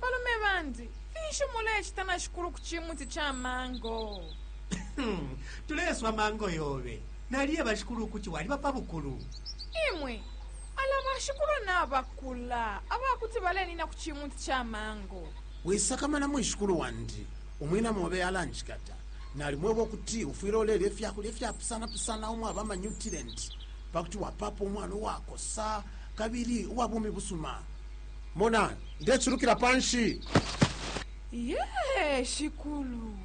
Balume bandi, finshi mulecita na shikulu ku cimuti ca mango? Tuleswa mango yobe. Naliye bashikulu ukuti waliba pa bukulu. Imwe, ala bashikulu nabakula aba kuti balenina ku cimuti ca mango. Wisakamana mwishikulu wandi, umwina mobe alanjikata. Nalimweba ukuti ufwile ulelya ifya kulya ifyapusana-pusana umwaba amanyutilenti pa kuti wapapa umwana uwakosa kabili uwa bumi busuma. mona ndeculukila panshi ye shikulu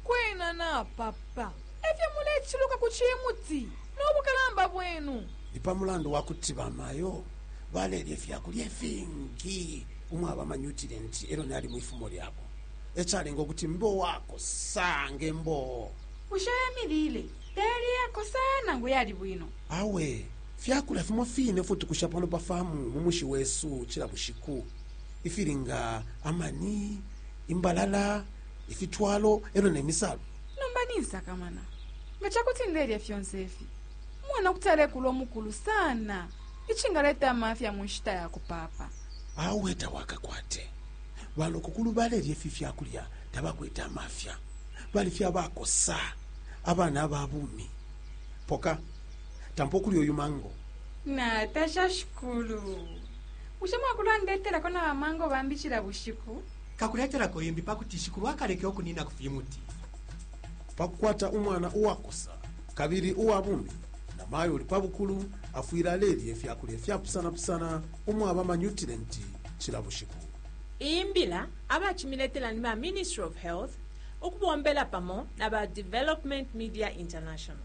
kwena napapa efyo muleciluka ku cimuti nobukalamba bwenu ni pa mulandu wa kuti bamayo balelya ifyakulya ifingi umwaba amanyutirenti elo nali mu ifumo lyabo ecalenga ukuti mbe uwakosa nge mboo bushe emilile teli yakosa nangu yali bwino awe Fya kulya fimo fine ifyo tukusha pano pa farmu mu mushi wesu cila bushiku, ifili nga amani, imbalala, ifitwalo e lyo ne misalu. Nomba ninsakamana. Nga ca kuti ndelya fyonse ifi, umwana kuti alekula umukulu sana icingaleta amafya mu nshita ya kupaapa. Awe tawakakwate. Banokokulu balelya ifi fya kulya tabakwete amafya, bali fye abakosa, abana aba bumi. Poka. tampa ukulya uyu mango natasha shikulu bushe mwakulandetelako na bamango bambi cila bushiku kakuletelako imbi pa kuti shikulu akaleke ukunina ku fimuti pa kukwata umwana uwakosa kabili uwa bumi na mayo uli pa bukulu afwile alelya ifya kulya fyapusanapusana umwaba amanyutilenti cila bushiku iyi mbila abacimiletela ni ba ministry of health ukubombela pamo na ba development media international